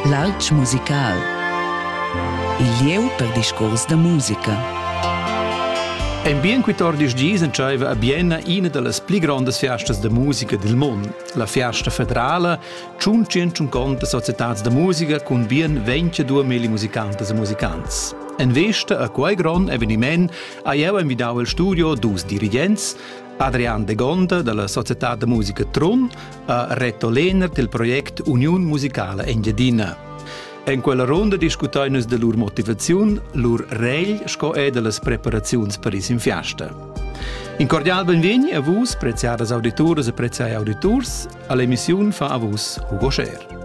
L'alp musical Il lieu per discurs da musica. En bien 14 dis entscheiva a Bienna ina dallas pli grondas fiastas da musica dil mund, la Fiasta federala, tschun conta societads da musica cun bien 22 mili musicantas e musicants. En vesta a quei grond eveniment ha jeu envidau il studio dus dirigents, Adrian de Gonda dalla società da musica Trun ha Reto Lehner del project Uniun musicala Engiadina. En quella ronda discutai nus de lur motivaziun, lur regl sco e de las preparaziuns per is in fiasta. In cordial benvegni a vus, preziadas auditoras e preziai auditors, all'emissione fa a vus Hugo Scher.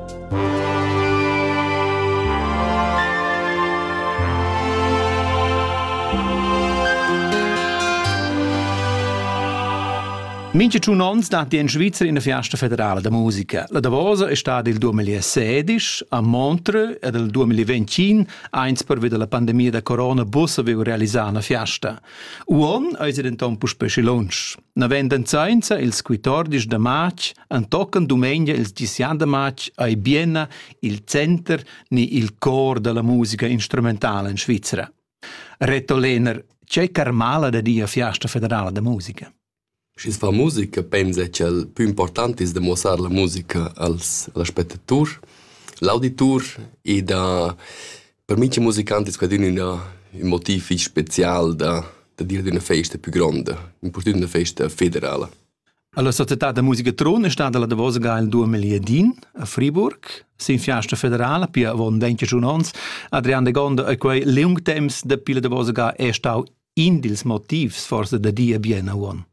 Mincha tschun ons datti in Svizra in fiasta federala da musica. La Davosa è stata il 2016 a Montreux ed il 2021, eins pervi della pandemia da corona, bus avevo realizzà una fiasta. Uon es denton puspè schi lunsch. Navenden sainza ils 14 da march antochen dumengia ils 10 da march ai Bienna il center ni il cor della musica instrumentale in Svizra. Reto Lehner, c'è Carmala da dia fiasta federala da musica? Schi's fa musica pensa cha'l pü important es da muossar la musica als als spettaturs, l'auditur e da per mincha musicant es quadün ün ün motiv fich spezial da da dir d'üna festa pü gronda, impurtünt üna festa federala. Alla società da musica Trun è stata la davosa ga il duemiladin a Friburg. Sin fiasta federala, pia avon 21 ons, Adrian de Gonda e quei liung temps dapi la davosa ga è stau In dils motivs forse da dir bien a uon.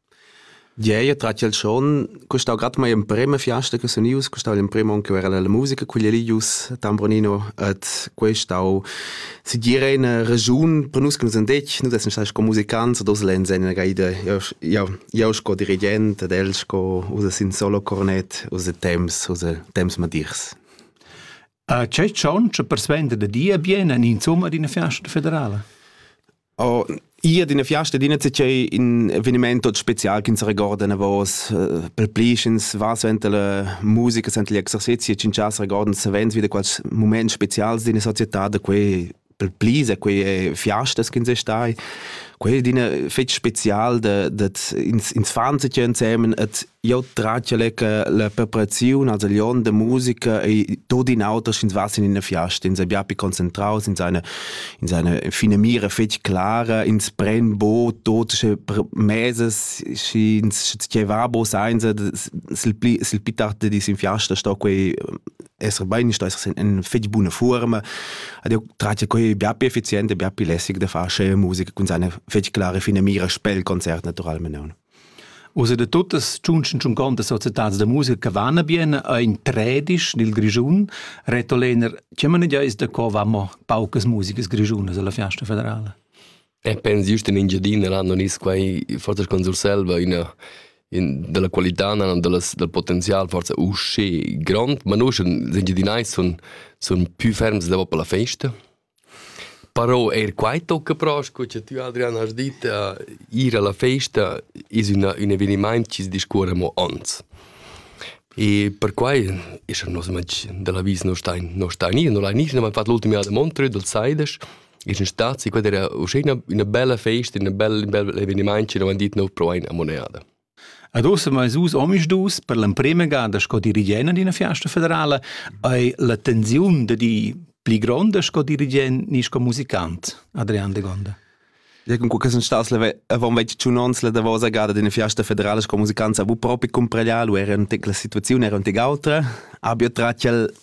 Gieia trat il schon, costau grad mai emprema fiasta che sun ius, costau l'emprema on che era la musica quella lì ius Tambronino et questau si dire eine Region per nus che nus andetg, nus essem stati sco musicants ad Oslen sen ga ida, io io sco dirigent ed el sco usa sin solo cornet, usa temps, usa temps madirs. A che tschontsch persuenter da dir bien en insomma d'ina fiasta federala? Oh, Ia d'ina fiasta d'ina c'è in eveniment tot special che ins regorda na vos per plischens va svent la musica svent gli exercizi e cinchas regordan savens wieder quals moments specials d'ina società da quei pel pli se quei fiastas che se stai quei è d'ina fetg spezial de de ins ins fan sich insemen et jo tratja le la preparaziun also lion de musica e tot in auter ins was in eine fiasta ins abia pi concentraus in seine in seine fine mira fetg clara ins pren bo tot che meses și ins ce va bo sein se sil pli sil pi tarde dis in fiasta sto quei esser bein sto esser in fetg buna forma Ed eu tratg quai bia più effizient e bia più lässig da far scheu musica cun seine fetg klare fine mira spel concert naturalmente. Also da tuttas tschuncontas societats da musica che vanno bene è in tredisch nel Grischun. Reto Lehner, che man ja ist da co vamo paucas musica grischunas alla Fiesta federale? E pens just in Engiadina nan non es quai forsa con Surselva üna in della qualità nan dallas dal potenzial forsa usché grond, ma nus engiadinais sun sun pü ferms davo per la festa. Però eir quai tocca però, sco cha tü Adrian hast dit, a ir alla festa es üna ün evenimaint chi discuorra amo ons. E per quai es er nos matg della vis non stain non stain ir, non l'ha nis, non l'ha fat l'ultima jada a Montreux, dal Saides, Il sun stat quella era uschè üna üna bella festa, üna bella ün bel evenimaint chi nu han dit nouv pro a Moneada. Ad ossa meis us omisdus per l'emprema gada sco dirigent d'ina fiasta federala hai la tensiun da di pli gronda sco dirigent ni sco musicant, Adrian de Gonda. Ja, con que sun stas avant 21 ans la davosa gada d'ina fiasta federala sco musicant, avevo propi cumpraglià, lu era la situaziun era un tec autra, abia tratg il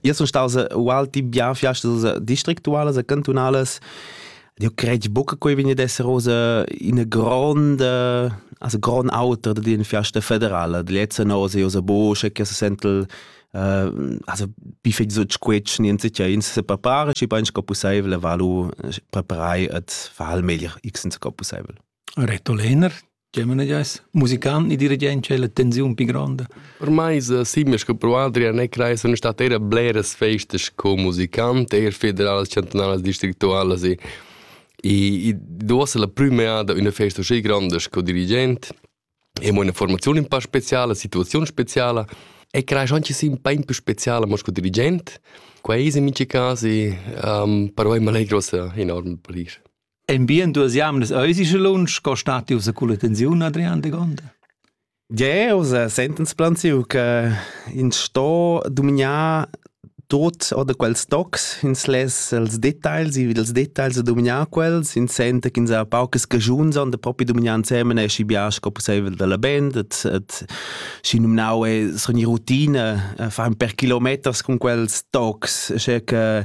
Io sun staus ualti bien fiastas districtualas e cantunalas. Eu cred buca che vegni ad esser oz ina gronda, also grond auter dad ina fiasta federala. Lezza nosa io sa boscha che se sentel also bi fetg sut squetsch niente che ins se prepara schi bein sco pusseivel e valu preparai et fa al meglier x sco pusseivel. Reto Lehner, Tgei manegiais? Musican e dirigentscha è la tensiun pli gronda? Per mai simia sco pro Adrian e crai sono state eir bleras festas co musicant, eir federalas, chantunalas, districtualas e e duossa la prüm'eada üna festa uscì gronda sco dirigent e mo üna formaziun un pa speciala, situaziun speciala e crai schon ci sia un po più speciala mo sco dirigent. Quai es in minchi cas e um, per oi m'allegra uossa enorm per ir. En bien duas jamnas eisi sche lunsch co stati ussa culla tensiun Adrian de Gonda? Ja, usa sentens plan siu che in sto dominar tot oder quels tocs ins les els details i dels details a dominar quels in sente ch'ins ha paucas cagiuns on da propi dominar insemen e schi bia sco possibel dalla band et et schi nominau e sogni routine fa per kilometers con quels tocs che che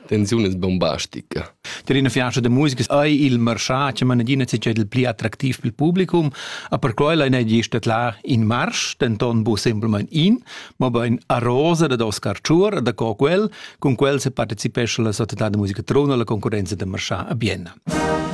tensiun es bombastica. Tar ina fianza da musica ei il marschà che mana adina il pli attractiv pel publicum, a per quella ne gesta là in marsch, denton bu simpelmain in, ma bein a rosa da Oscar Chur, da co quel, con quel se partecipesce la società de musica Trona alla concorrenza de marschà a Bienna.